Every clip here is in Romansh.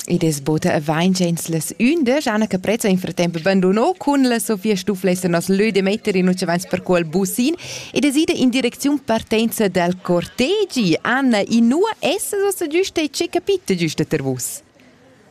Id es buca avainch ins las ündesch, Anna Caprezza in fratemp bandunò cun la Sofia Stuff lessa nos lö de metter in ucevans per quel busin ed es ida in direcziun partenza dal cortegi. Anna, inua essas ossa giüsta e che capit giüsta ter vus?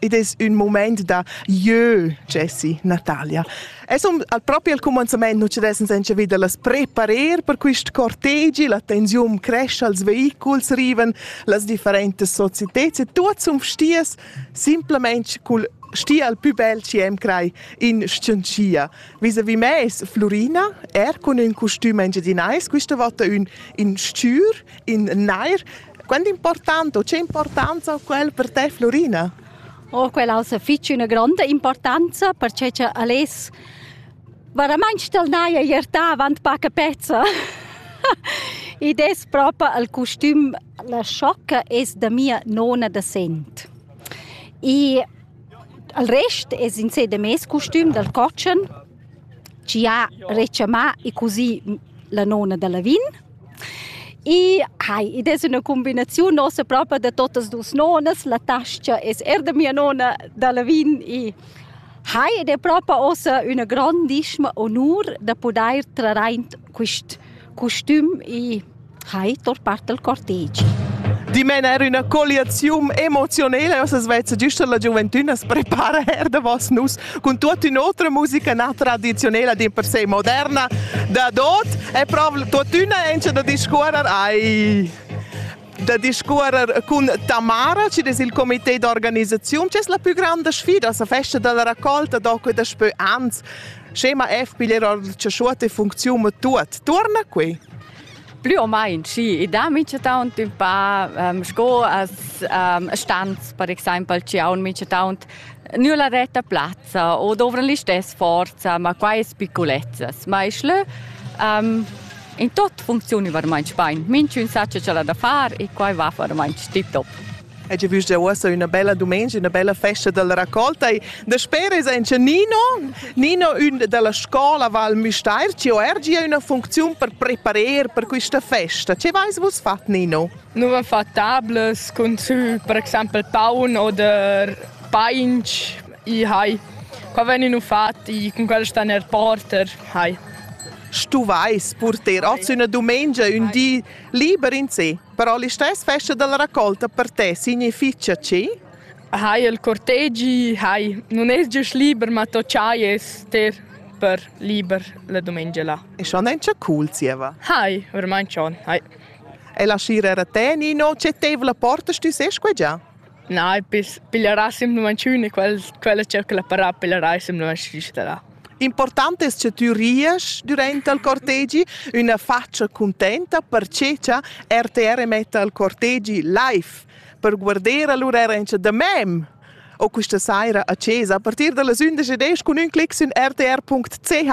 Id es ün mumaint da jeu, Jessi, Natalia. Es un, al propi al cumanzamaint nu ci dessem senza vita las preparer per quist cortegi, la tensiun cresce, els vehiculs riven, las differentas societeds e tuot sun vstias simplamaing cul stia al pü bel chi am crai in scientia. Vis-à-vis me es Flurina, er cun ün costüm engiadinais, quista vota ün in s-chür, in nair, Quant important u che importanza ha quel per te, Florina? Oh, quella ha fitg una grande importanza perché che Ales veramente tel naia ierta avant paca pezza. Ed es proprio il costüm La sciocca es da mia nona da Sent. E il rest es in sé da mes costüm dal cotschen, ci ha rechamà e così la nona da Lavin I hai, id es üna cumbinaziun nossa propa da totas duos nonas, la tas-cha es eir da mia nona da Lavin i hai ed è propa ossa üna grandischma onur da pudair trar aint quist custüm i hai tor part dal cortegi. Dimen er üna colliaziun emozionela, ossa svezza giüsta la giuventüna as prepara eir davos nus. cun tutta un'otra musica na tradiziunela di per sé moderna da dot e proprio tuttina ence da discuorer ai da discuorer cun Tamara, ci des il comité d'organizzazione, c'è la più grande sfida, la festa della raccolta dopo da spö ans. Scema F piglier or ciasciuta funzione tut. Torna qui. plü o main schi i dà minchataunt ün pa um, sco as um, stanz per exaimpel chi haun minchataunt nür la retta plazza o dovran listess forza, ma quai es picculezzas. Ma isch lö um, in tot funcziuni varmaint spain. Minchün sacha cha l'ha da far e quai va varmaint stip top. E già vus già uossa üna bella dumengia, üna bella festa dalla raccolta. E daspera es anche Nino, Nino ün dalla scola Val Müstair chi ho er gia üna funcziun per preparer per quista festa. Che vais vus fat, Nino? Nous vam fat tables cun sü per exaimpel paun oder painch i hai. Qua veninu fatti cun quel sta nel porter, hai. Stu vais purter oz üna dumengia ün di liber in se? Però listess festa dalla raccolta per te significha chi? Hai il cortegi, hai. Non es giust liber, ma to chai es te per liber la domenica là. E schon encha cool zieva. Hai, ormai schon, hai. E la scira era te, Nino, c'è tev la porta, stu ses qua già? Na, piglierà simplamaing ün e quels quella cerca da parà piglierà simplamaing schisterà. Important es cha tü ries dürant al cortegi, üna fatscha cuntenta, perche cha RTR metta al cortegi live per guarder all'urarrentscha da mem o quista saira a chesa a partir da las 11 cun ün clic sün rtr.ch